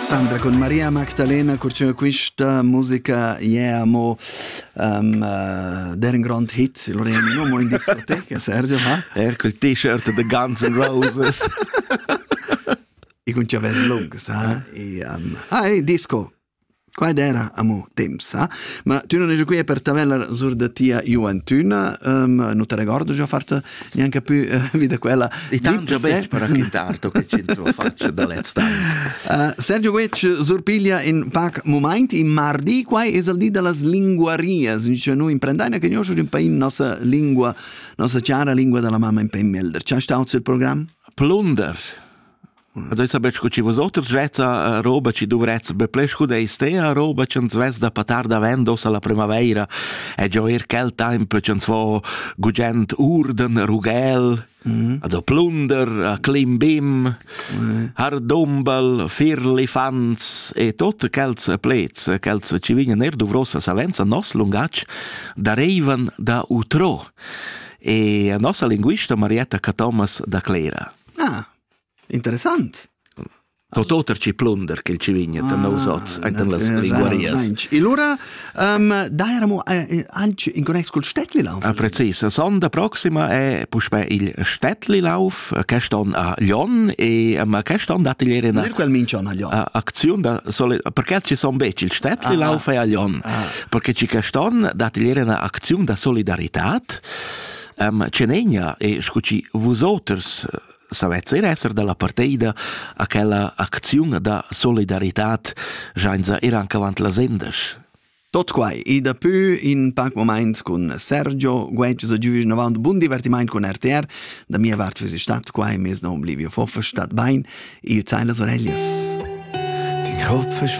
Sandra con Maria Magdalena cur quista musica yeah mo um, uh, der ein grand hit Lorena no mo in discoteca Sergio ha er col t-shirt the Guns N' Roses e con chavez lungs ha e um, ai disco Quai d'eira amo temp sa, ma tü non esa quia per tavellar sur da tia juantüna, nu te regordo già forsa gnanca pü vi da quella. I t'han già betg raquintar to che chi'ns ho fatg da lez temp. Sergio Guetg surpiglia in pac mumaint in mardi, quai es il di da las linguarias, dice nu imprendaina che gnoschu ün pain nossa lingua, nossa chara lingua da la mamma in pe melder. C'ha stau il program? Plunder. Also esa be scu chi vosoters vezza roba chi dovrezza be ple scu da istea roba ch'ans vezza patar davent ossa la prümavaira e giò eir quel temp ch'ans vo gugent urden, rughel, mm. also plunder, clim bim, mm. hardumbel, firlifants e tutte quels plets, quels chi vignan eir dovrosa savenza nos lungatg da reivan da utro. E a nossa linguista Marietta Cathomas da Clera. Ah, Interessant. Tot oter ci plunder che il ci vigna da nous oz enten las linguarias. E lura um, da eramo eh, anche in connex col Städtlilauf. Ah, precis, sonda proxima è puspè il Städtlilauf, quest'on a Lyon e ma quest'on date ieri una quel mincion a Lyon. Aktion da sole perché ci son bec il Städtlilauf ah, ah. è a Lyon? Ah. Perché ci quest'on date ieri una azione da solidaritat. Um, Cenegna e scuci vosoters savess ir esser dalla parteida a quella acziun da solidaritad jainza ir anche avant las endas. Tot quai e dapü in pac moment cun Sergio Guetgs a giuisch avant bun divertiment cun RTR. Da mia vart füss stat quai mes nom Livio Foffer stat bain e zeilas oreglias. Dein Kopf ist